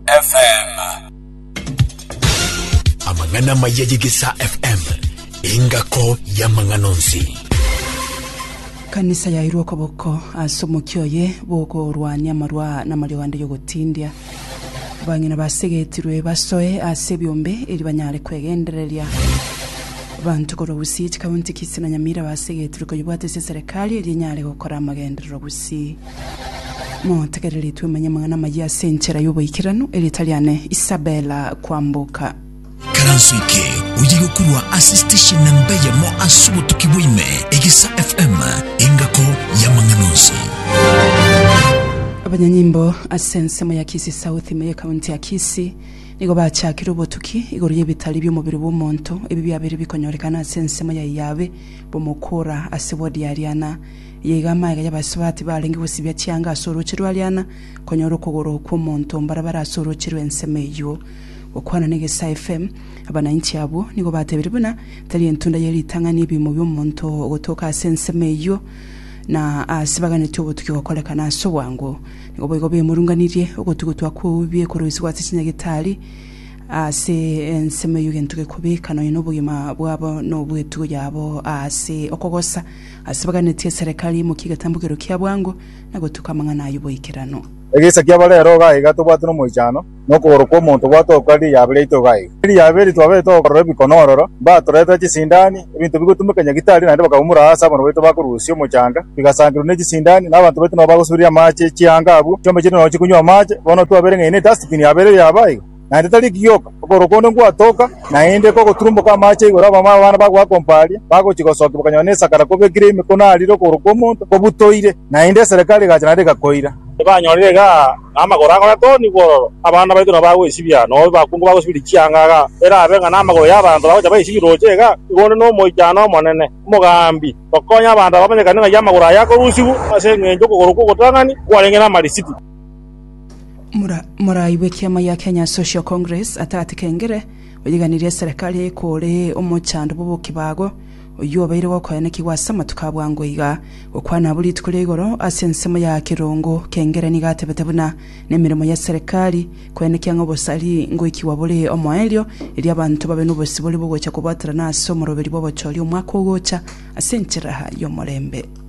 FM. Amang'ana amaya y'Egesaa FM, engako y'amang'ana onsi. Kanisa yairwe okoboko ase omokia oye bw'okorwania amarwa namariogo ande y'ogotindia. Bang'ina basegetirwe basoe ase ebiombe eri banyare kwegendereria. Banto korwa Gusii, chikaunti Kisii na Nyamira basegetirwe koyebwate ase eserekari eri enyare gokora amagenderero Gusii. Motegerere twemanye amang'ana amayia ase enchera y'oboikeranu, erieta riane Isabella Kwamboka. Ikaranso eke oye gokurwa ase station namba eyemo ase obotuki bwa ime, Egesa FM, engako y'amang'ana onsi. Abanyanyimbo ase ensemo ya Kisii South ime y'ekaunti ya Kisii nigo bachakire obotuki igoro y'ebitari bi'omobere bw'omonto ebi biabeire bikonyorekana ase ensemo ya Iyabe bomokura ase ward ya Ariana Yaigwa amaega y'abasubati barenge gosibia chianga ase orooche rwa riana, konyora okogoro kw'omonto mbare bare ase orooche rw'ensemo eyio. Gokwana n'egesae FM, abananchi abwo nigo batebirie buna tari entunda ye ritang'ani ebiimo bi'omonto ogotooka ase ensemo eyio na ase baganetie obotuki gokorekana ase obwango. Nigo boigo bemurunganirie ogotugutwa kw'ou biekoroisigwa ase chinyagitari ase ensemo eyio gento gekobeka nonya nobogima bwabo nobwetugo yabo ase okogosa. Ase baganetie eserekari imokie egetambogero kia bwango, na gotuka amang'ana a yoboikeranu. Egeisa kia bare ero iga iga tobwate nomoichano, na okogoro kw'omonto gwatookwa erio riabe riaito iga iga. Erio riabe erio twabeire togokorora ebikono ororo, mbatoretera chisindani, ebinto bigotumeka nyagitari, naende bakaumora aase abanto baito bakorusia omochanga, bigasankerwa ne chisindani, na abanto baito nabo bagosuberia amaache chianga abwo, chiombe chiria nonya chikonywa amaache, bono twabereng'aine ase dustbin yabeire riaba iga. naende tari gioka okorokwa onde ngwatoka, naende kogoturumboka amaache igoro abamama b'abana bagoakompa aria, bagochia gosokia bakanyora nesakara kobekire emikono arire okorokwa omonto kobutoire, naende eserekari egacha naende egakoira. Ebanyorire iga na amagoro akoya toni bwororo, abana baito nabo bagoisibia, na obe bakungu bagosibiria chianga iga erabe ng'a namagoro y'abanto bagocha baisibire roche iga, igo onde nomoichano omonene, omogambi, okonya abanto aba bamenyekane ng'ai amagoro aye akorusigwa ase engencho y'okogoro kw'ogotang'ani kwarenge namarisitu. Morai bw'ekiama gia Kenya Social Congress atagati kengere oyeganirie eserekari ekore omochando bw'obokibago oyio obeire gokoenekigwa ase amatuko abwango iga gokwana abwo rituko ria igoro ase ensemo ya kirongo kengere nigo atebete buna nemeremo ye serekari koenekia ng'a obosari ngoikigwa bore omoerio erio abanto babe nobosibore bwogocha kobwaterana ase omoroberi bw'obochori omwaka ogocha ase enchera y'omorembe.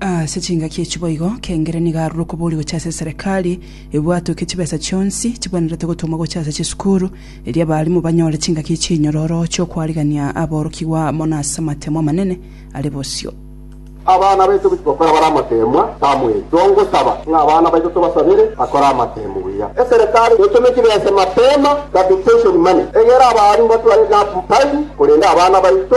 Ase chingaki echi boigo, kengire nigo arure okoboria gochia ase eserekari, ebwatoke chibesa chionsi chibwenerete gotongwa gochia ase chisukuru, erio abarimu banyore chingaki chinyororo chi'okwarigania aborokigwa amo nase amateemwa amanene are bosio. Abana baito gochia gokora bare amateemwa, Samuel, tongosaba ng'a abana baito tobasabere bakore amateemu buya. Eserekari netome chibesa mapema, capitation money, egere abarimu batware enough time korenda abana baito.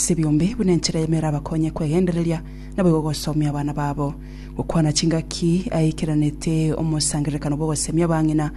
Ase biombe, buna enchera y'emo erabakonye kwegendereria, naboigo gosoomia abana babo. Gokwana chingaki aikeranete omosangererekano bw'ogoseemia abang'ina,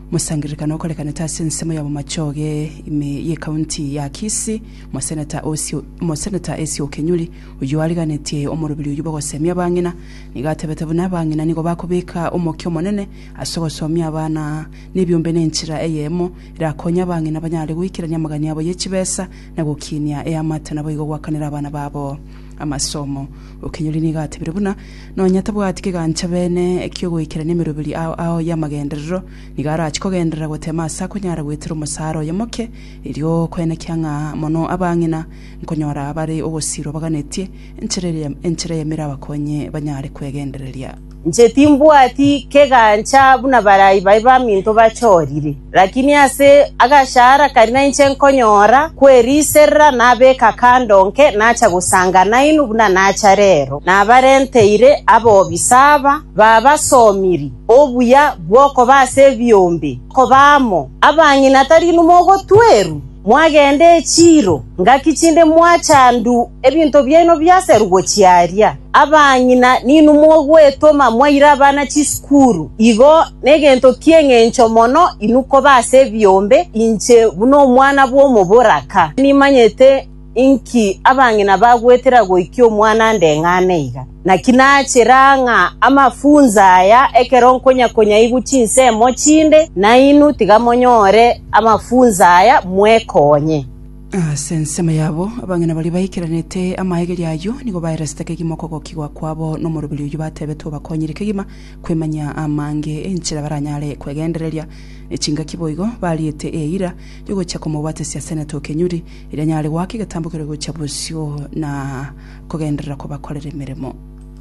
omosangererekano okorekanete ase ensemo ya bomachoge ime y'ekaunti ya Kisii, Omoseneta Osio, Omoseneta Esio Okenyuri, oyio ariganetie omorobiri oyio bw'ogoseemia abang'ina, nigo atebete buna abang'ina nigo bakobeka omokia omonene ase ogosoomia abana nebiombe nenchera eyemo erakonye abang'ina banyare goikerania amagani abo ye chibesa na gokinia eamate, naboigo goakanera abana babo amasomo. Okinyori nigo atebire buna nonya tabwati kegancha bene ekiogoikerania emeroberi ao ao y'amagenderero, nigo arache kogenderera gotema ase akonyara goetera omosara oye moke, erio koenekia ng'a mono abang'ina nkonyora bare ogosiirwa baganetie enchera eria enchera eyamire abakonyi banyare kwegendereria. Inche timbwati kegancha buna barai baye baminto bachorire, lakini ase agashahara karia nainche nkonyora kweriiserera nabeka kando nke nacha gosanga nainwe buna nacha rero. Nabarenteire abobi saba babasomiri obuya bw'okoba ase ebiombe, koba amo abang'ina tari inwe mogotwerwa? Mwagende echiiro ngaki chinde mwachandu ebinto biaino biaserugwe chiaria. Abang'ina ninwe mogwetoma mwaire abana chisukuru, igo negento ki'engencho mono inwe koba ase ebiombe inche buna omwana bw'omoboraka. Nimanyete Inki abang'ina bagwetera goikia omwana ndeng'ane iga? Naki nachera ng'a amafunso aya ekero nkonyakonyaigwa chinsemo chinde, nainwe tiga monyore amafunso aya mwekonye. Ase ensemo yabo abang'ina baria baikeranete amaegerio ayio nigo baeresete kegima okogokigwa kwabo nomoroberio oyio batebetwe obakonyire kegima kwemanyia amange enchera baranyare kwegendereria. Ne chingaki boigo bariete eira yogochia komobwatisia Senator o Kenyuri Erio anyare goaka egetambo keria gochia bosio na kogenderera kobakorera emeremo.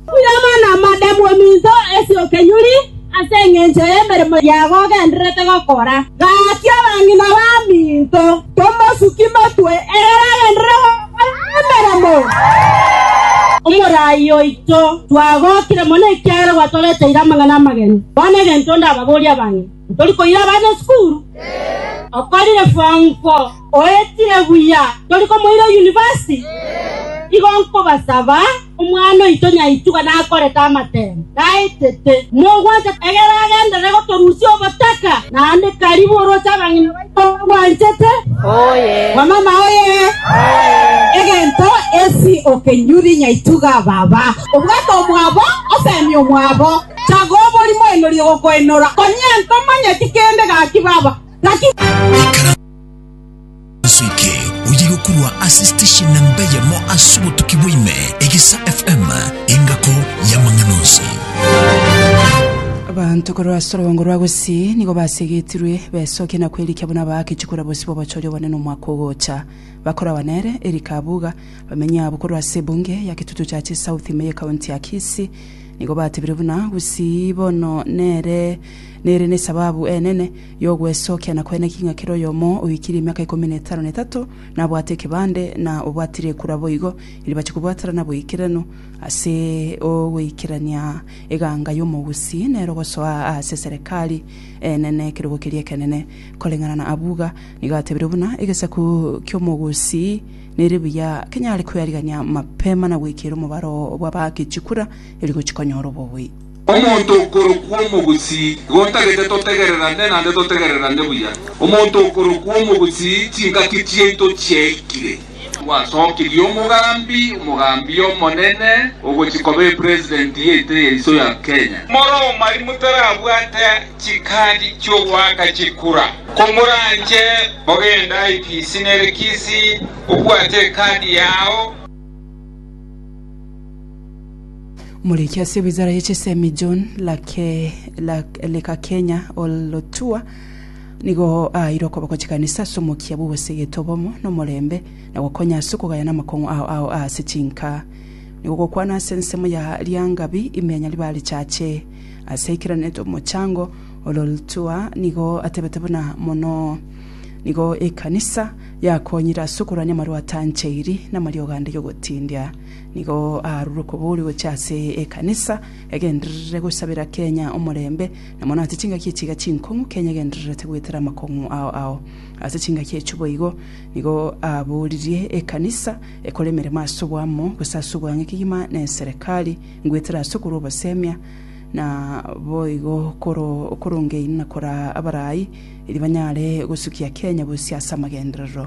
Buyoma na amade bw'ominto ase okenyuri ase engencho y'emeremo yago ogendererete gokora. Gaakia abang'ina b'aminto, tomosuki motwe ekero agenderere gokora emeremo. Omoraai oito, twagokire mono ekiagera gwatogeteire amang'ana amageni. Bono egento ndababorie abang'ina, tori koira abana esukuru? Okorire form four? Oetire buya, tori komoira yunivasiti? Igo nkobasaba, omwana oito nyaituga nakorete amatemo, naetete, mogwancha egere agenderere gotorusia obotaka, naende karibu oroche abang'ina baito bagwanchete. Wamama oye! Egento esi okenyuri nyaituga baba. Obwate omwabo, osemie omwabo. Chaga oborimo enorie gokoenora. Konya ntomanyeti kende gaki baba, gaki. Ase eke oye gokurwa ase station na mbeyemo ase obotuki bwaime egesa FM engako y'amang'ana onsi. Abanto korwa ase orogongo rwa Gusii nigo basegetirwe besokie na kwerikia buna baakechwe korwa bosio bw'obochori obonene omwaka ogocha. Bakoragwa nere Eric Abuga, bamenyi abwo korwa ase ebunge ya Kitutu Chache South ime ye county ya Kisii nigo batebire buna Gusii bono nere nere nesababu enene y'ogwesokia na koeneka ing'a kera oyomo oikirie emiaka ikomi na etano na etato nabwate ekebande, na obwatire ekura boigo, eribache kobwaterana boikeranu ase ogoikerania eganga y'omogusi, nero gosoa aase Serekari enene ekerogo keria ekenene. Koreng'ana na abwo iga nigo atebirie buna egesaku ki'omogusi nere buya kenyare kwearigania mapema na gweikera omobaro bw'abaaki chikura, eri gochi konyora obobui. Omonto okorokwa omogusii, igo ntagete totegererane naende totegererane buya. Omonto okorokwa omogusii, chingaki chiaito chiaikire. Gwasokirie omogambi, omogambi omonene, ogochia koba epresident yaito yaiso ya Kenya. More omari motarabwate chikadi chiogoaka chikura. Komoranche mogende IPC nere Kisii obwate ekadi yao. Muriki ase wizara ya chisemi John Lake, Lake, Lekakenya Olotua nigo aire okoboko chikanisa ase omokia bw'obosegete obomo na omorembe na gokonya ase okogayana amakong'u ao ao ase chinka nigo gokwana ase ensemo ya Lyangabi ime ya Nyaribari Chache ase aikeraneto omochango Ololtua nigo atebete buna mono nigo ekanisa yakonyire ase okorwania amarwatancheiri na amariogo ande yogotindia Nigo aarure okobori gochia ase ekanisa, egendererere gosabera Kenya omorembe, na mono ase chingaki echi iga chinkong'u, Kenya egendererete goetera amakong'u ao ao. Ase chingaki echio boigo, nigo aaboririe ekanisa ekore emeremo ase oboamo, gose ase obwang'e kegima na eserekari, ngoetera ase okorwa obosemia, na boigo koro korongeine na koraa abarai, erio banyare gosukia Kenya bosio ase amagenderero.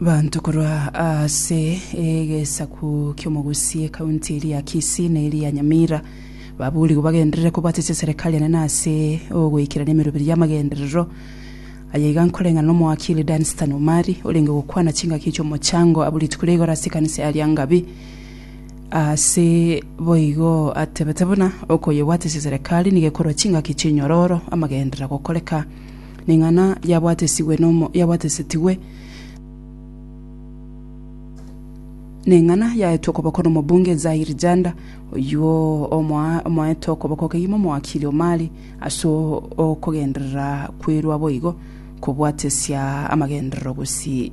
Banto korwa ase egesaku ki'omogusi ekaunti eria ya Kisii na eria ya Nyamira baburigwe bagenderere kobwatisia eserekari enene ase ogoikerania emeroberi y'amagenderero. Aya iga nkoreng'ana n'omoakili Dunstan Omari orenge gokwana chingaki chi'omochango abwo rituko ria igoro ase ekanisa ya Lyangabi. Ase boigo atebete buna okoyebwatisia eserekari nigo ekorwa chingaki chinyororo amagenderera gokoreka. ning'ana yabwatesigwe nomo yabwatesetigwe, ning'ana yaetwe okoboko nomobunge Zahir Janda, oyio omoa omoete okoboko kegima omowakili Omari ase o- okogenderera kwerwa boigo kobwatesia amagenderero gosii.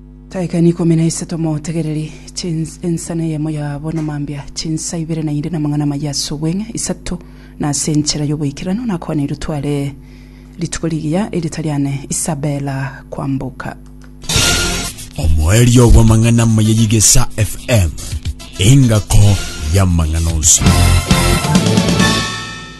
Taikaini ikomi na isato motegereri chins, ensana eyemo yabo na mambia chinsa ibere na inde na amang'ana amayia ase obweng'e, isato na ase enchera y'oboikeranu nakwaneirwe tware rituko rigiya eritari ane Isabella kwamboka. Omoerio bw'amang'ana amaya y'Igesa FM, engako y'amang'ana onsi.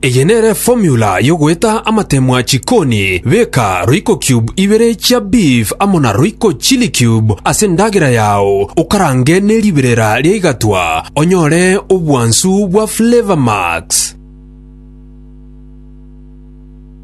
Eye nere formula yogoeta amatemwa chikoni, beka royco cube ibere chia beef amo na royco chili cube ase endagera yao okarange ne riberera ria igatwa onyore obwansu bwa flavor max.